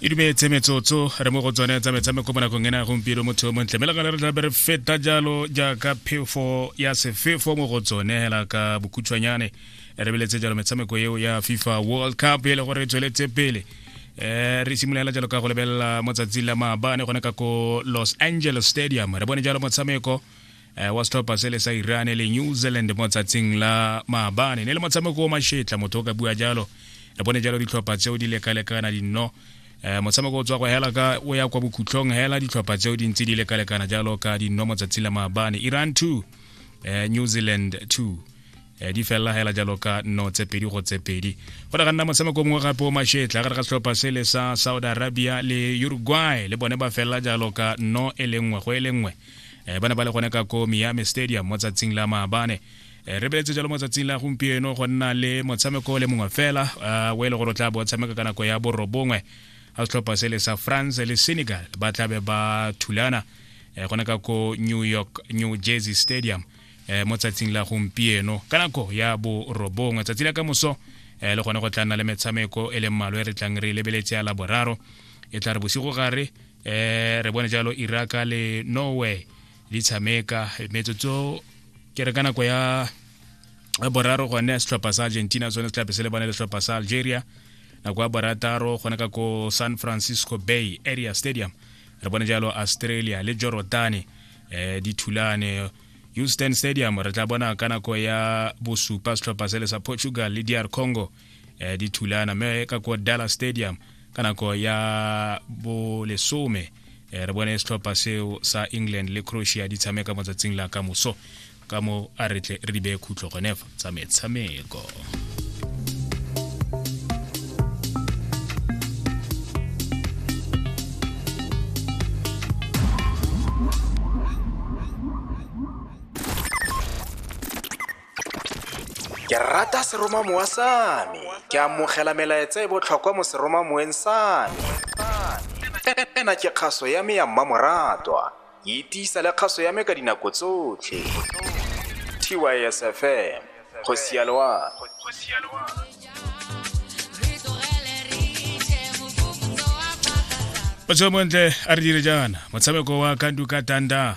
e dumetse metsotso re mo go tsone tsa metshameko mo nakong ena ya gompieno motho yo montle mme le gale re tlabe re feta jalo jaaka phefo ya sefefo mo go tsone hela ka bokhutshwanyane re beletse jalo metshameko eo ya fifa world cup e le gore e tsweletse pele um re simolola jalo ka go lebelela mo tsatsing la maabane gone ka ko los angeles stadium re bone jalo motshameko eh, wa setlhopha se le sa iran le new zealand mo tsatsing la maabane ne le motshameko o mashetla motho o ka bua jalo le bone jalo ditlhopha tseo di lekalekana dinno eh, motshameko o tswa go hela ka o ya kwa bokhutlhong hela ditlhopha tseo di ntse di lekalekana jalo ka dinno mo tsatsing la maabane iran 2 eh, new zealand 2 eh, di felela hela jalo ka nno tse pedi go tse pedi go ne ga nna motshameko mongwe gape o mashetla gare ga setlhopha se le sa saudi arabia le uruguay le bone ba felela jalo ka nno e le nngwe go e le nngwe um ba ne ba le gone ka ko miami stadium mo tsatsing la maabane Eh, re beletse jalo mo tsatsing la gompieno go nna le motshameko le mongwe fela eh, o e le gore o tla bo tshameka ka nako ya borobongwe ga setlhopha se le sa france le senegal ba tlabe ba thulana eh, gone ka ko new york new jersey stadium mo tsatsing la gompieno ka nako ya borobongwe tsatsi la ka moso le gone go tla nna le metshameko e leng malwe re tlang re lebeletse ya laboraro e tla re bosigo gare eh re bone jalo iraka le norway di tshameka metsotso ke re ka nako ya boraro gone setlhopha sa argentina sone se tlabe se lebane le setlhopha sa algeria nako ya borataro gone ka ko san francisco bay area stadium re bone jalo australia le jorodane eh di thulane houston stadium re tla bona ka nako ya bosupa setlhopha se le sa portugal le dr congo eh, di thulana mme ka ko dallas stadium ka nako ya bolesome eh, re bone setlhopha seo sa england le croatia di tshameka mo tsatsing la ka moso ka mo a re tle re di beye khutlo gonefa tsa metshameko ke rata seromamowa sa me ke amogela melaetsa e botlhokwa mo seromamoweng sa me ena ke kgaso ya me ya mmamoratwa e tiisa le kgaso ya me ka dinako tsotlhe tysfm go sialoa o tswe montle a re dire jaana motshameko wa kandu ka tanda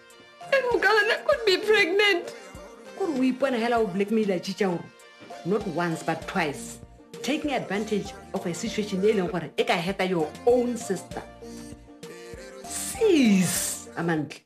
And Mugalana could be pregnant. Kuri o ipona hela o blackmaila chicha o not once but twice taking advantage of a situation e leng gore e ka heta your own sister. Sis, Amantle.